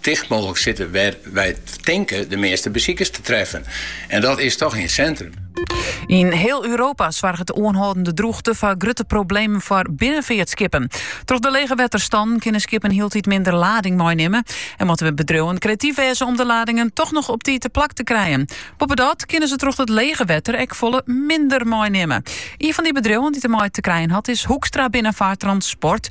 Ticht mooglik sitte wêr't wy tinke de measte besikers te treffen. En dat is toch yn it sintrum. Yn hiel Europa soarget de oanhâldende drûchte foar grutte problemen foar binnenfeartskippen. Troch de lege wetterstannen kinne skippen hieltyd minder lading meinimme en moatte bedriuwen kreatyf wêze om de ladingen toch noch op tiid te plak te krijen. Boppedat kinne se troch it lege wetter ek folle minder meinimme. Ien fan dy bedriuwen dy't dermei te krijen hat is Hoekstra Binnenvaarttransport.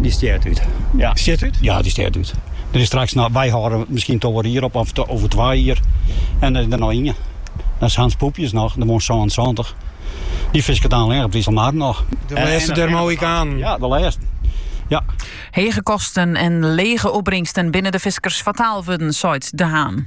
Dy stjert út. Ja. Dy stjert út? Ja, dy stjert út. Der is straks noch, wy hâlde miskien takom jier op, of te, oer twa jier. En der is der noch ien. Dat is Hans Poepjes noch, dy wurdt 70. Dy fisket dan allinne op 'e Iselmar noch. De laatste der Mohikanen. Ja, de laatste. Ja. Hege kosten en lege opbringsten binne de fiskers fataal wurden, seit De Haan.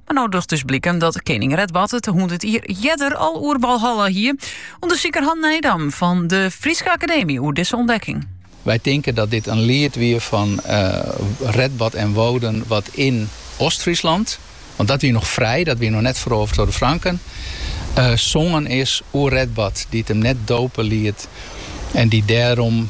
Mar no docht it dus bliken dat kening Redbad it hûndert jier earder al oer Walhalla hie. Undersiker Han Nijdam fan de Fryske Akademy oer dizze ûntdekking. Wy tinke dat dit in liet wie fan Redbad en Woden wat yn Ostfryslân, want dat wie noch frij, dat wie noch net ferovere troch de Franken, songen is oer Redbad, dy't him net dope liet en dy't dêrom,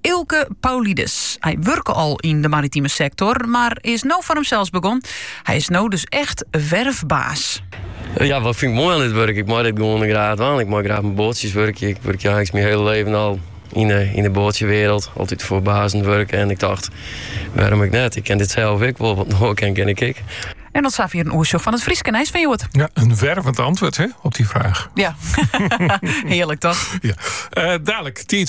Eelke Paulides. Hy wurke al yn de maritime sektor, mar is no foar himsels begûn. Hy is no dus echt werfbaas. Ja, wat fyn ik moai oan dit wurk? Ik mei dit gewoane graach dwaan. Ik mei graach mei boatsjes wurkje. Ik wurkje eigentlik myn hiele libben al yn de, yn de boatsjewrâld. Altyd foar bazen wurke. En ik dacht, wêrom ik net? Ik kin dit sels ek wol, want no kin, kin ik ek. En dat safier in oersjoch fan it Fryske nijs fan hjoed. Ja, een wervend antwoord hè, op die vraag. Ja, heerlijk toch? Ja. Uh, dadelijk, tijd